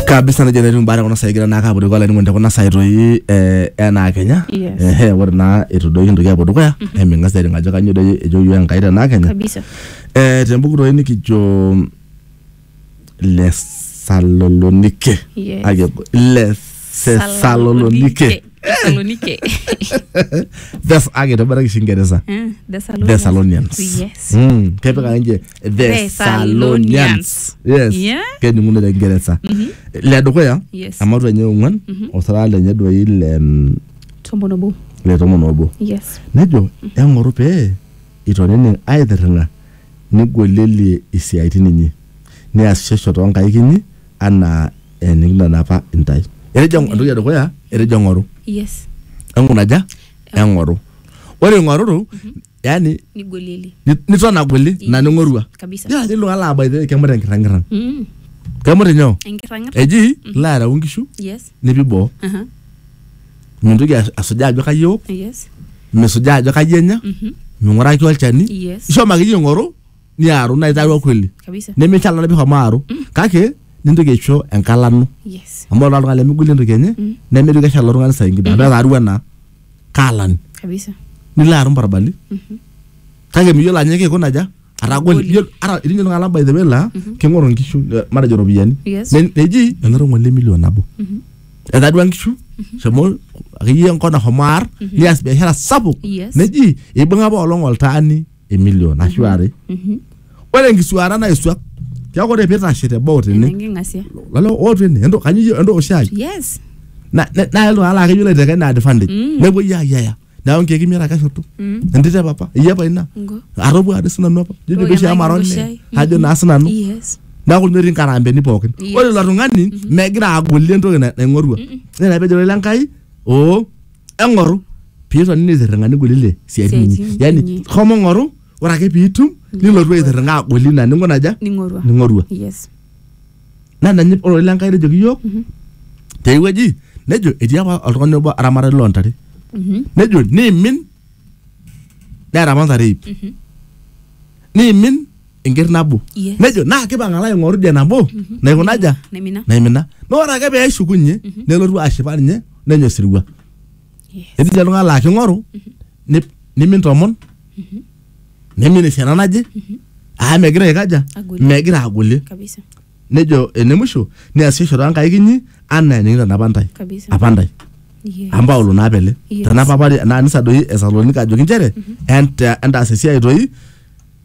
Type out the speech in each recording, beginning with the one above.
kabisa nejo netii mbaa tekuna saai egira naa ake apuo dukuya olainining'oni tekuna saai toi eh, enaa kenya Yes. Ehe, ore naa itu doi kintoki apuo dukuya eming'as doi aning ajo kanyioo doi ejo yioo enkai tenaa kenya kabisa Eh, tembuku toi nikijo lesalonike Yes. Ake- lesesalonike Thessalonike. Thes- ake toboraki shi ingeresa Eh, Thessalonians. Thessalonians. Yes. Mm, kepik ake nje Thessalonians. yes Yeah. kening'uno te kingeresa le dukuya Yes. amatu enye ong'uan osara lenye doi le mm, Tombo nobo. le tomon obo Yes. nejo eng'oru pee itonini aaitirring'a nigolielie isiaitin inyi niasishosho too nkaik inyi anaa enikintanapa intae etejo Yeah. entoki edukuya etejo eng'oru Yes. eng'unaja eng'oru ore ing'oruru yani nigolieli ni- niton agoli Yes. na ning'orua Kabisa. ya nilo ala abaithe kemut enkirrang'irran mm. kemut inyoo enkirrang'irra eji ilo areu nkishu yes nipi boo Aha. mintoki as- asujaa ajo kai eok yes misujaa ajo kai enya Mhm. ming'uraki olchani yes ishomo akeyie ing'oru niaru naa itaarua kweli kabisa nemeishala napi homo aaru kake nintoki aisho enkalano yes amu ore oltung'ani lemegoli entoki enye nemeitoki eshala oltung'ani saa ingine amu etaarua naa kaalami kabisa nilo arum barbali kake miyiolo ajo kikuna aja atagol Atagoli. Iyiolo- ara etii ninye iltung'anak by the way laa king'oru nkishu eh, matejo ropiyiani Yes. Ne- neji enoto ng'ole milion nabo etadua nkishu shomo akeyie enkop nahomo aar nias biashara sapuk Yes. neji ibung'a apa olong oltaani emilion ashu are Mhm. ore enkisuaata naisuak tiaku ore pitashe teboo Ena tene enking'asia. lalo ootu ene ento kanyio ento oshai Yes. na na- na iltung'anak laa keyiolo aiteka ina advantage Mm. nepuoi ayiaya neeku nkeek imiet ake eshoto Mm. entito e papa iyie apa ina Ngo. atopua ade sinanu apa jojo Ore peshi ena amara ole king'asia. ajo naa sinanu Yes. neeku ninye etii nkarambeni pookin Yes. ore ilo tung'ani megira agolie entoki na- naing'orua nena pejo lele Enkai oo eng'oru piiton nitirring'a nigolile siatin inyi Siatin yani inyi. homo ng'oru ore ake piitum nilotu aitirring'a agoli ina ninguna aja ning'orua ning'orua yes naa ina ninye ore lenkai nejoki iyiook tewueji nejo etii apa oltung'ani obo aramatani loontare Mhm. nejo niimin neeta apa ntare iip niimin enker nabo Yes. nejo naa kipang alo aing'oru dia nabo naikunaja Naimina. naimina na ore ake pee eshukunye nelotu ashipa ninye nenya osirua Yes. etii ninye oltung'ani laa king'oru ni- nimin tomon nimin esiana naje aa megira aikaja Agoli. megira agolie Kabisa. nejo ene musho niasisho too nkaik inyi anaa enikitanapa ntae Kabisa. apa ntae Yes. amu paulo naa pele Yes. tanapa apa naa anisa doi esalonika ajoki nchere enta- entaas esiai toi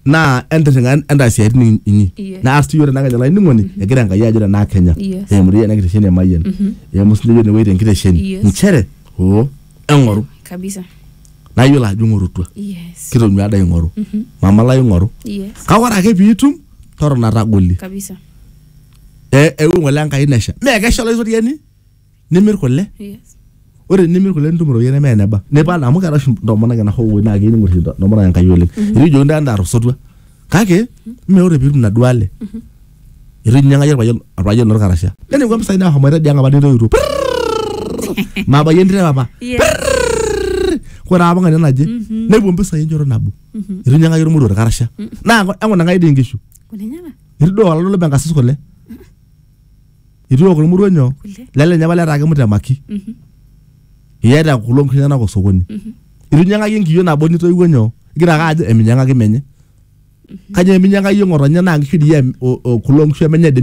naa entirring'a entaas isiaitin in- inyi Yes. naas tiyo tenakenya olainining'oni egira enkai ajo tenaa kenya Yes. eimu doi ena kitesheni emayian eimu sinye enewueji tenkitesheni Yes. nchere oo eng'oru kabisa naa iyiolo ajo ing'orutua yes kitonyua ada ing'oru mama lai ing'oru yes kake ore ake piitum totona tagoli kabisa e- eewuo ng'ole enkai nesha mee kesha olaitoriani nimir kule Yes. ore nimir kule nitum iropiyiani neme eneba nipal amu keeta oshi ntomonok ena hoo naa keyieu ning'or ntomonok enkai oleng etiu ijo ndaa endaa tosotua kake mme ore piitum inaduo ale etu inyiang'aki orpayian orpayian lino orkarasha nening'u mpisai nahomoita idia ang apa nireutuo Prrrr! maabayie entito e papa Yes. ore apa ng'ania naje nepuo mpisai enchoto nabo etu inyiang'aki ormoruo orkarasha naa eng'ona enkai dii inkishu Kulenyana. etu duo olalo lebe enkasis kule itu eok irmurua nyoo Kule. lelenye apa letaa kimutemaki Mhm. iyaita kulo nkishu enyenak osokoni Mhm. itu inyiang'aki enkiyio nabo nitoiwuo nyoo igira ake ajo eminyiang'aki menye kajo eminyiang'aki iyie ng'otonye naa nkishu dii em- o- o- kulo nkishu emenye dii